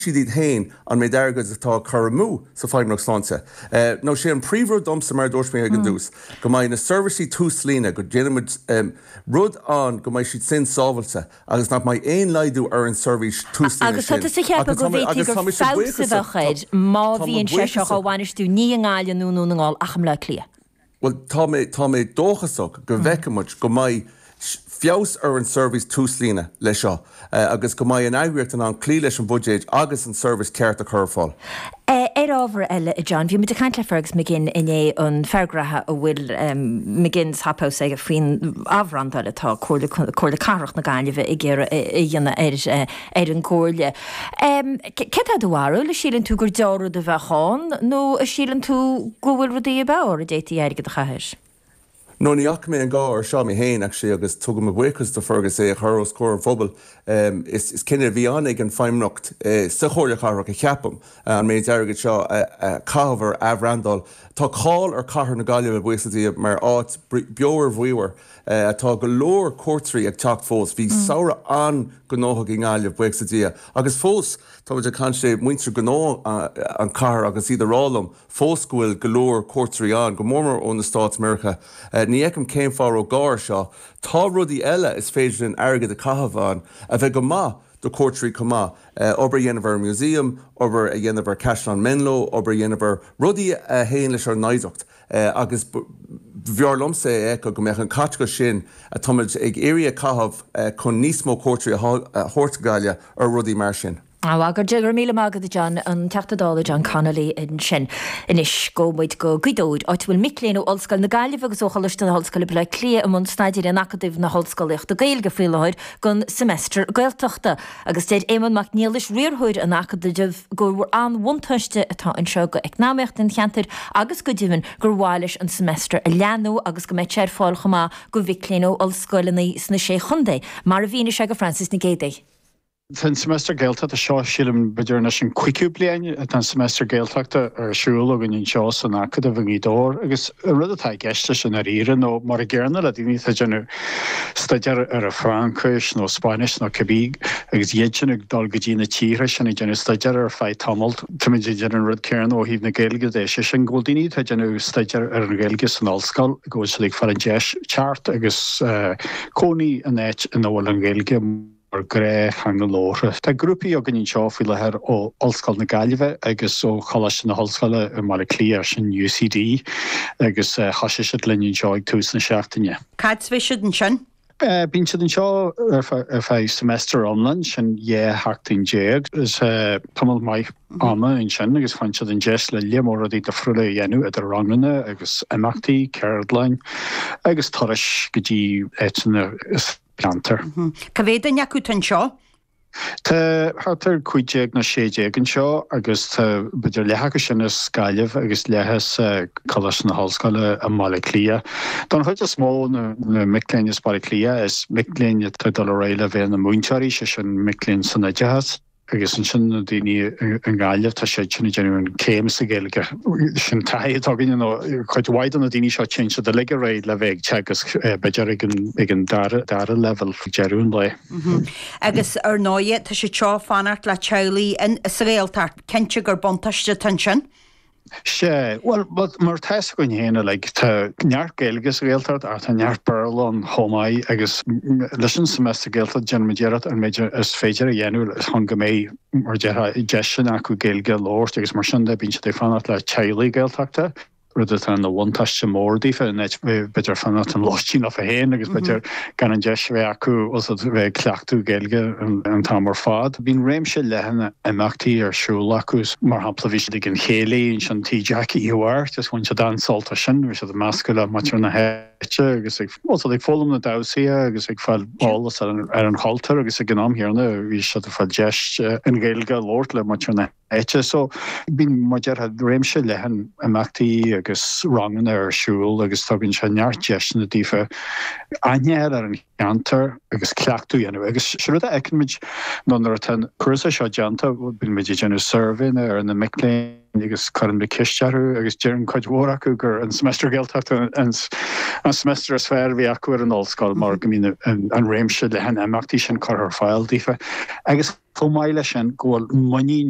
diabhal iad féin an méid airgid atá á chur amú sa Feidhmeannacht Sláinte. Nó sé an príomhrud domsa, mar a dúirt mé ag an dtús, go mbeidh na seirbhísí túslíne, go ndéanfaidh muid rud ann go mbeidh siad sin sábháilte agus nach mbeidh aon laghdú ar an tseirbhís túslíne sin. Agus tá tú ag ceapadh go bhféadfadh gur feabhas a bheadh air má bhíonn sé seo á bhainistiú, ní i nGaillimh ná i nDún na nGall, ach i mBleá Cliath. Bhuel, tá mé, tá mé dóchasach go bhfeicfidh muid, go mbeidh feabhas ar an seirbhís túslíne leis seo agus go mbeidh an eagraíocht in ann cloí leis an bhuiséad agus an tseirbhís cheart a chur ar fáil. Ar ábhar eile, a John, bhí muid ag caint le Fergus McGinn inné, an fear gnaithe a bhfuil McGinn's Hop House aige faoin athbhrandáil atá Comhairle Cathrach na Gaillimhe ag iarraidh a dhéanamh air. ar an gComhairle. Céard é do bharúil, a síleann tú gur dea-rud a bheadh ann nó a síleann tú go bhfuil rudaí ab fhearr a d'fhéadfaí airgead a chaitheamh. Nó ní fhaca mé an gá ar seo mé féin actually agus tugaim mo bhuíochas do Fergus é a chur os comhair an phobail. Is cinneadh a bhí ann ag an Feidhmeannacht sa Chomhairle Chathrach ceapaim, an méid airgid seo a chaitheamh ar athbhrandáil. Tá cáil ar Cathair na Gaillimhe, buíochas le Dia, mar áit bheomhar bhríomhar Tá go leor cuairteoirí ag teacht fós. Bhí samhradh an-ghnóthach i nGaillimh, buíochas le Dia, agus fós tá muid ag caint le muintir gnó an chathair agus iad ag rá liom fós go bhfuil go leor cuairteoirí ann, go mór mór ó na Stáit Meiriceá. Ní fheicim cén fáth a raibh gá air seo. Tá rudaí eile is féidir linn airgead a chaitheamh ann a bheadh go maith do cuairteoirí chomh maith, obair a dhéanamh ar an Museum, obair a dhéanamh ar Chaisleán Menlo, obair a dhéanamh ar rudaí a théann leis ár n-oidhreacht. agus b'fhearr liomsa é a fheiceáil go mbeadh an caiteachas sin atáimid ag iarraidh a caitheamh chun níos mó cuairteoirí a thabhairt abhaile ar rudaí mar sin. Go raibh míle maith agat John, an Teachta Dála John Connolly ansin. Anois gabhfaidh muid go Gaoth Dobhair, áit a bhfuil mic léinn ó Ollscoil na Gaillimhe agus ó Choláiste na hOllscoile Baile Átha Cliath i mbun staidéir in Acadamh na hOllscolaíochta Gaeilge faoi láthair don seimeastar Gaeltachta. Agus deir Éamonn Mac Niallais, Riarthóir an Acadaimh, gur an-bhuntáiste atá anseo d'eacnamaíocht an cheantair agus go deimhin gur mhaith leis an seimeastar a leathnú agus go mbeadh sé ar fáil chomh maith go mhic léinn ó ollscoileanna sna Sé Chontae, mar a mhínigh sé go Frances Nic Géidigh. Tá an seimeastar Gaeltachta seo, sílim, b'fhéidir anois an cúigiú bliain atá an seimeastar Gaeltachta ar siúl againn anseo san Acadamh i nGaoth Dobhair agus an rud atá i gceist leis i ndáiríre nó, mar a dearnadh le daoine atá ag déanamh staidéar ar Fraincis nó Spáinnis nó cibé agus iad sin ag dul go dtí na tíortha sin ag déanamh staidéar ar feadh tamaill. Táimid ag déanamh an rud céanna ó thaobh na Gaeilge de, sé sin go bhfuil daoine atá ag déanamh staidéar ar an Ghaeilge san ollscoil, go bhfuil siad ag fáil an deis teacht agus cónaí in áit ina bhfuil an Ghaeilge. mar ghnáth-theanga labhartha. Tá grúpaí againn anseo faoi láthair ó Ollscoil na Gaillimhe agus ó Choláiste na hOllscoile i mBaile Átha Cliath, sin UCD, agus thosaigh siad linn anseo ag tús na seachtaine. Cá fhad a bheas siad ansin? Bíonn siad anseo ar feadh semester iomlán, sin dhá sheachtain déag. So tamall maith ama ansin agus faigheann siad an deis le lear mór rudaí difriúla a dhéanamh idir ranganna agus imeachtaí, ceardlanna agus turais go dtí áiteanna. ceantar. Cá mhéad duine acu atá anseo? Tá thart ar chúig déag nó sé déag anseo agus tá b'fhéidir leath acu sin as Gaillimh agus leath as Coláiste na hOllscoile i mBaile Átha Cliath. Don chuid is mó na mic léinn as Baile Átha Cliath is mic léinn atá ag dul ar aghaidh le bheith ina múinteoirí, sé sin mic léinn san oideachas. Agus ansin na daoine i nGaillimh, tá siad sin ag déanamh an chéim sa Ghaeilge. Sin taithí atá againne, nó cuid mhaith de na daoine seo, téann siad uilig ar aghaidh le bheith ag teagasc, b'fhéidir ag an dara leibhéal ag deireadh an lae. Agus ar ndóigh, tá siad seo ag fanacht le teaghlaigh sa Ghaeltacht, cinnte gur buntáiste atá ansin. Sea, bhuel, mar atá a fhios againn féin uilig, tá neart Gaeilge sa Ghaeltacht ach tá neart Béarla ann chomh maith agus leis an Seimeastar Gaeltachta déanaimid iarracht an méid is féidir a dhéanamh chun go mbeidh, mar a déarfá, deiseanna acu Gaeilge a labhairt agus mar sin de bíonn siad ag fanacht le teaghlaigh Gaeltachta, rud atá ina bhuntáiste mór daofa in áit b'fhéidir fanacht i lóistín leofa féin agus b'fhéidir gan an deis a bheith acu a bheith ag cleachtadh Gaeilge an t-am ar fad. Bíonn réimse leathan imeachtaí ar siúl acu, mar shampla bhí siad ag an chéilí ansin Tí Jackie Hiúdaí agus bhain siad an-sult as sin, bhí siad ag meascadh le muintir na háite agus ag foghlaim na damhsaí agus ag fáil eolas ar an chultúr agus ag an am céanna bhí siad ag fáil deis an Ghaeilge a labhairt le muintir na áite. So, bíonn mar a déarfá réimse leathan imeachtaí agus ranganna ar siúl agus tugann sé neart deiseanna daofa aithne a fháil ar an cheantar agus cleachtadh a dhéanamh. Agus sé rud a fheiceann muid ná nuair atá an cúrsa seo déanta, bhuel, bíonn muid ag déanamh suirbhéanna ar na mic léinn agus cuireann muid ceist orthu agus deireann cuid mhór acu gur an seimeastar Gaeltachta an seimeastar is fearr a bhí acu ar an ollscoil mar go mbíonn an réimse leathan imeachtaí sin curtha ar fáil daofa. Agus chomh maith leis sin go bhfuil muinín.